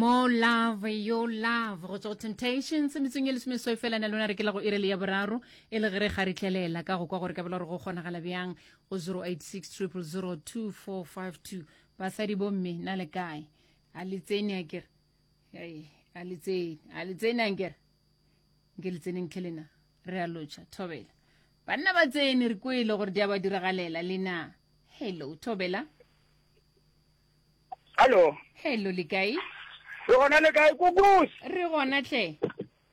More love, your love. Go tswa go Temptations, metsong e lesomesoi fela na lona re kela go irele ya boraro, e le gere ga re tlelela ka go kwa gore ka bela gore go kgonagala bjang go 086 000 2452. Basadi bomme, na le kae? A le tsene a kere? Hey, a le tsene, a le tsene a kere? Nke le tseneng tlhe lena, re a lotšha, thobela. Banna ba tsene, re kwele gore di a ba diragalela, lena. Hello, thobela. Hallo. Hello, le kae? Re gona le kae kukus? Re gona tle.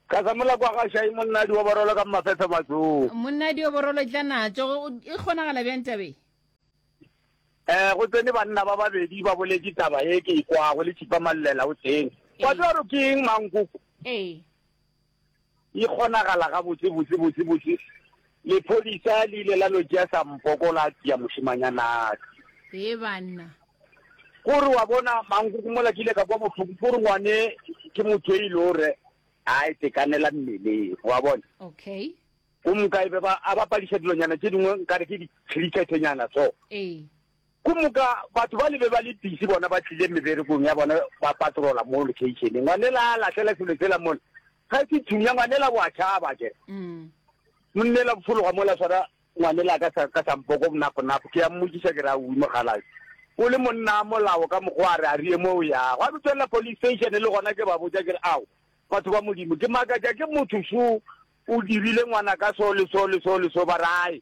Ka sa mola kwa ga shai monna di oborolo ka mafefe matsong. Monna di oborolo tla natso e kgonagala bjang tabe? Eh go tsene banna ba babedi ba boletse taba e ke ikwago le tshipa mallela o teng. Wa tswa ro keng mang kuku? Eh. E kgonagala gabotse botse botse botse lephodisa le ile la no tšea sampoko la tšea mošemanyanaka. Hee banna. Kore wa bona mankoko mola ke ile ka kwa bohloko kore ngwane ke motho e ile gore a itekanela mmeleng wa bona. Okay. Go mka e be ba a ba padiša dilonyana tše dingwe nkare ke di-cricketenyana so. Ee. Ku moka batho bale be ba le pisi, bona ba tlile meberekong ya bona, ba patrola mo locationeng. Ngwanela a lahlela selo sela mola, ga se thunya, ngwanela wa tšhaba ke re. Monnela o fologa mola, swara ngwanela ka sa, ka sampoko bonaponapo, ke a mmotšiša ke re, Aowi mokgalabje, o le monna a molao ka mokgwa a re a riye mo o yago. Gwa be tswelela police station, le gona ke ba botša ke re, Ao, batho ba Modimo, ke makatša ke motho so o dirile ngwana ka so le so le so le so, ba re, Ae,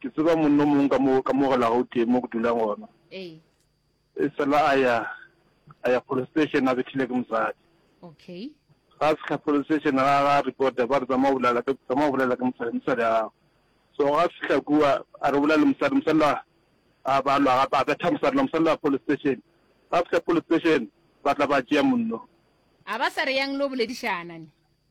Ke tseba monna o mongwe ka mo ka mo gela gauteng mo ke dulang gona Ee. e fela a ya a ya police station a bethile ke mosadi Okay. ga a fitlha police station ga ga reporta ba re tsamaya o bolela ke tsamaya o bolela ke mosadi mosadi a gago so ga a fitlha kua a re bolela le mosadi mosadi la a ba lwa gape a betha mosadi la mosadi la police station ga a fitlha police station ba tla ba tšea monno A ba sa re yang lo boledišana ne?